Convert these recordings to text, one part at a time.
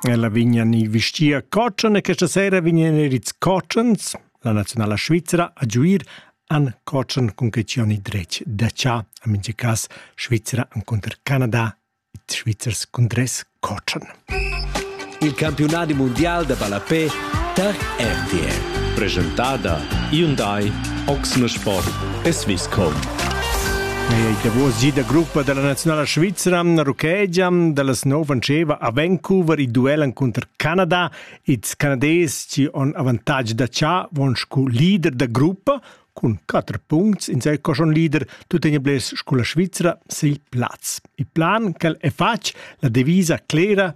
Ella vegnan i vestia cotschen e questa sera vegnan er ils cotschens. La nazionala svizra a giuir an cotschen cun questioni dretg da cha. A minge cas Svizra encunter Canada, i Svizzers cun tres cotschen. il campiunadi mundial da ballapè tar RTL. Presentada Hyundai, Oxne Sport e Swisscom. Ei davos gi da gruppa dalla nazionala svizra ruchegia dallas nov antscheva a Vancouver il duel encunter Canada. Ils canadés ci on avantatg da cha von scu leader da gruppa cun 4 punts in sei coschon leader tuttegna bles scu la Svizra sil plaz. Il plan quel è fatg la devisa clera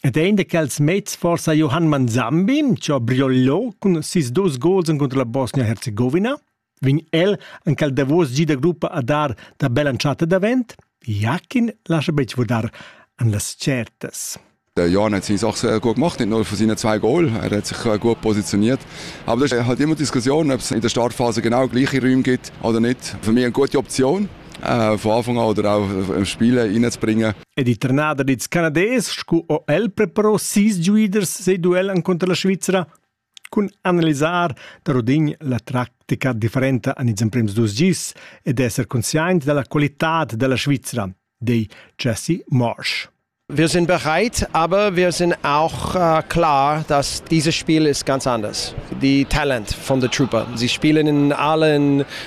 Ed ein da quels mezs forsa Johann Manzambin, che ha briollo cun sis dus gols contro la Bosnia-Herzegovina? Vegn el en quel davos gi da gruppa a dar da bella entschatta davent? Jakin lascia betg vurdar an las certas. Der Jan hat sich auch sehr gut gemacht, nicht nur von seinen zwei Goal. Er hat sich äh, gut positioniert. Aber das ist halt immer Diskussion, ob es in der Startphase genau gleiche Räume gibt oder nicht. Für mich eine gute Option, äh, von Anfang an oder auch im Spiel reinzubringen. Ed il trenader dils Canadés sco o el preparò sis giuiders sei duel encunter la Svizra cun analisar da rodin la tactica differenta an ils emprems dus gis ed esser conscient dalla qualitad della Svizra, dei Jesse Marsh. Wir sind bereit, aber wir sind auch äh, klar, dass dieses Spiel ist ganz anders. Die Talent von der Trooper. Sie spielen in allen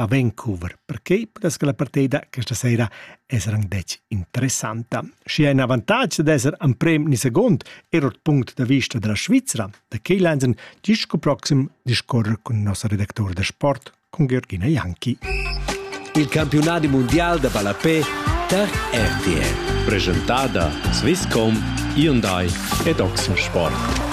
a Vancouver. Perquei pudess che la partida questa sera esser anc detg interessanta. Schi ein avantatg d'esser en prem ni second er ord punct da vista della Svizra, da Keylansen, disco proxim discorre cun nossa redactor da sport, con Georgina Janki. Il campionat mondial da ballapé per RTL. Presentada Swisscom, Hyundai ed Oxford Sport.